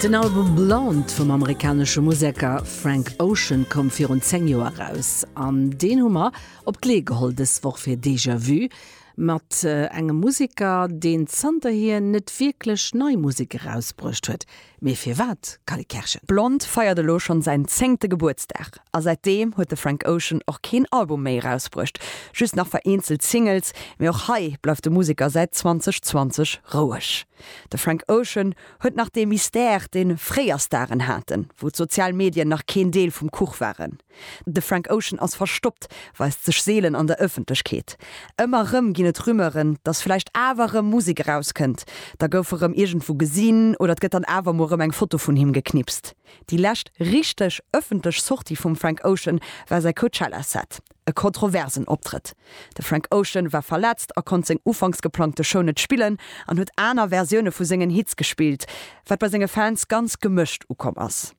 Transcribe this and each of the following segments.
Den Album Blonde vum amerikanesche Museker Frank Ocean koum virun 10 Joer eraus an deen hu mer op d'Lee geholl dës Woch fir Déjà Vu mat engem Museker, deen zanterhier net wierklech nei Musek erausbruecht huet. Mee firwat, Cally Kerschen? Blonde feiert elo schonn säin zéngte Gebuertsdag a säitdeem huet de Frank Ocean och keen Album méi erausbruecht, just nach vereenzelt Singles. Mee och hei bleift de Museker säit 2020 roueg. De Frank Ocean huet nach dee Mystère, dee fréier Staren haten, wou d'sozial Medien nach keen Deel vum Kuch waren. De Frank Ocean ass verstoppt, weist sech seelen an der Ëffentlechkeet. Ëmmer rëm ginn et Rumeuren, dass vläicht awer rëm Musek erauskënnt, da gouf e rëm iergendwou gesinn oder et gëtt dann awer mol rëm eng Foto vun him geknipst. Déi lescht richteg ëffentlech Sortie vum Frank Ocean war säi Coachella-Set. E kontroversen Optrëtt. De Frank Ocean war verletzt a konnt seng ufanks geplangte Show net spillen an huet aner Versioune vu sengen Hits gespillt, wat bei senge Fans ganz gemëscht ukomm ass.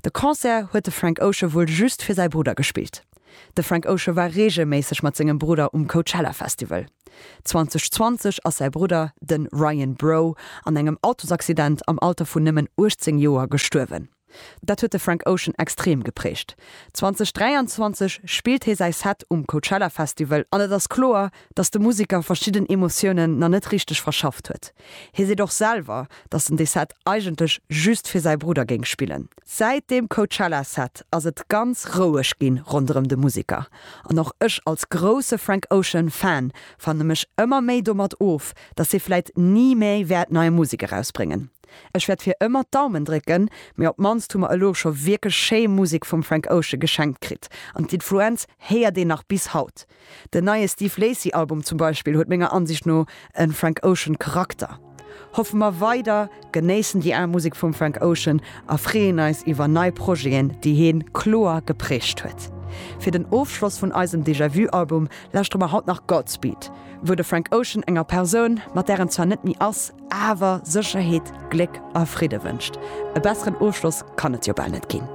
De Concert huet de Frank Ocean wuel just fir säi Brudder gespillt. De Frank Ocean war reegelméisseg mat sengem Brudder um Coachella Festival. 2020 ass säi Brudder, den Ryan Breaux, an engem Autosaccident am Alter vun nëmmen 18 Joer gestuerwen. Dat huet de Frank Ocean extrem geprägt. 2023 spillt hie säi Set um Coachella Festival an et ass kloer, dass de Museker verschidden Emotiounen nach net richteg verschafft huet. Hie seet och selwer, dass en dee Set eigentlech just fir säi Brudder géing spillen. Säit deem Coachella Set ass et ganz roueg ginn ronderëm de Museker. An och ech als grousse Frank Ocean Fan fanne mech ëmmer méi domat of, dass hie vläit ni méi wäert nei Musek erausbréngen. Ech wäert fir ëmmer d'Daumen drécken, mee op d'mannst hu mer elo scho wierklech schéi Musek vum Frank Ocean geschenkt kritt an d'Influenz héiert een nach bis haut. Den neie Steve Lacy Album zum Beispill huet menger Ansicht no en Frank Ocean Charakter. Hoffe mer weider, genéissen déi al Musek vum Frank Ocean a freeën eis iwwer nei Projeten déi heen kloer geprägt huet. Fir den Ofschloss vun eisem Déjà Vu Album lauschtere mer haut nach Godspeed, wou de Frank Ocean enger Persoun, mat där en zwar net méi ass, awer Sécherheet, Gléck a Fridde wënscht. E besseren Ofschloss kann et jo bal net ginn.